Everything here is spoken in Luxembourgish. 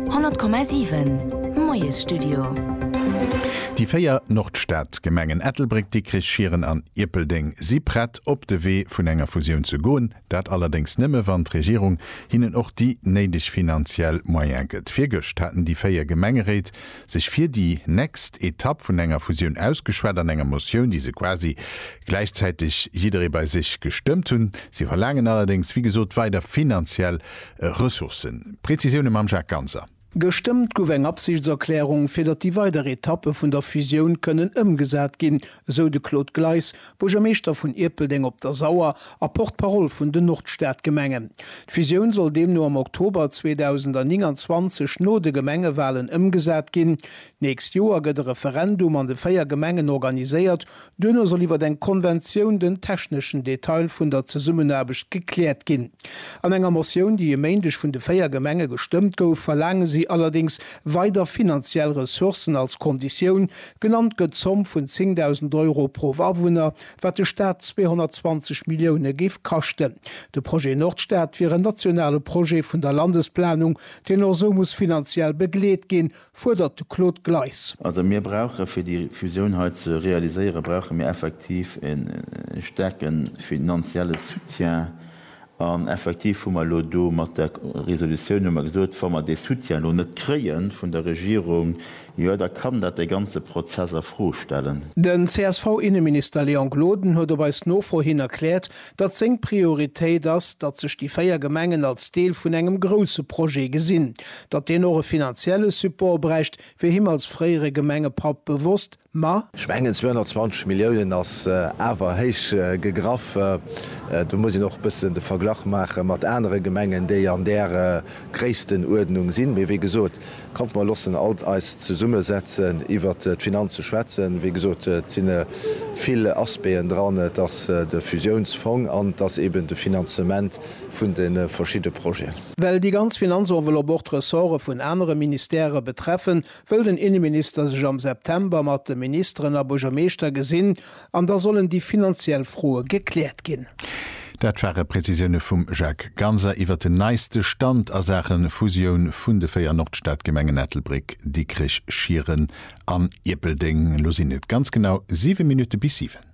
100,7 Moiesstudio. Déi véier Nordstadgemengen Ettelbréck, Dikrich, Schieren an Ierpeldeng si prett op de Wee vun enger Fusioun ze goen. Dat allerdéngs nëmme wann d'Regierung hinnen och déi néideg finanziell Moyen gëtt. Virgëscht haten déi véier Gemengeréit sech fir déi nächst Etapp vun enger Fusioun ausgeschwat an enger Motioun, déi se quasi gläichzäiteg jidderee bei sech gestëmmt hunn. Si verlaangen allerdéngs wéi gesot weider finanziell Ressourcen. Präzisioune mam Jacques Ganser. Gestëmmt gouf eng Absichtserklärung, fir datt déi weider Etappe vun der Fusioun kënnen ëmgesat ginn, esou de Claude Gleis, Buergermeeschter vun Ierpeldeng op der Sauer a Porte-parole vun den Nordstadgemengen. D'Fusioun soll deemno am Oktober 2029 no de Gemengewalen ëmgesat ginn. D'nächst Joer gëtt e Referendum an de véier Gemengen organiséiert, Duerno soll iwwer eng Konventioun den techneschen Detail vun der Zesummenaarbecht gekläert ginn. An enger Motioun, déi e Méindeg vun de véier Gemenge gestëmmt gouf, verlaange si allerdéngs weider finanziell Ressourcen als Konditioun. Genannt gëtt d'Zomm vun 10.000 Euro pro Awunner, wat de Staat 220 Millioune géif kaschten. De Projet Nordstad wier en nationale Projet vun der Landesplanung, deen och esou muss finanziell begleet ginn. fuerdert de Claude Gleis. Also mir brauche fir déi Fusioun hei ze realiséiere brauche mir effektiv e staarke finanzielle Soutien. An effektiv hu mer elo do mat der Resolutioun hu mer gesot, wa mer dee Soutien elo net kréie vun der Regierung, jo da kann dat de ganze Prozess a Fro stellen. Den CSV-Inneminister Léon Gloden huet op eis Nofro hin erkläert, datt seng Prioritéit ass, datt sech déi véier Gemengen als Deel vun engem grousse Projet gesinn, datt deen och e finanzielle Support bräicht, wier him als fréiere Gemengepapp bewosst, ma. Ech mengen 220 Milliounen ass awer héich gegraff. Do muss een och e bëssen de Verglach maache mat anere Gemengen, déi an där Gréisstenuerdnung sinn. Mee wéi gesot, Kommt mer loossen alt eis zesumme setzen iwwert d'Finanze schwätzen. Wéi gesot, et si vill Aspéen dran, et ass de Fusiounsfong an et ass eben de Finanzement vun de verschidde Projeten. Well déi ganz Finanzenveloppe och d'Ressorte vun anere Ministèrë betreffen, wëll den Inneminister sech am September mat de Ministeren a Buergermeeschter gesinn, An da sollen déi finanziell Froe gekläert ginn. Dat ware Prezisioune vum Jacques Ganser iwwer den neiste Stand a Saache Fusioun vun de véier Nordstadgemengen Ettelbréck, Dikrech, Schieren an Ierpeldeng. Elo sinn et ganz genau siwe Minutte bis siwen.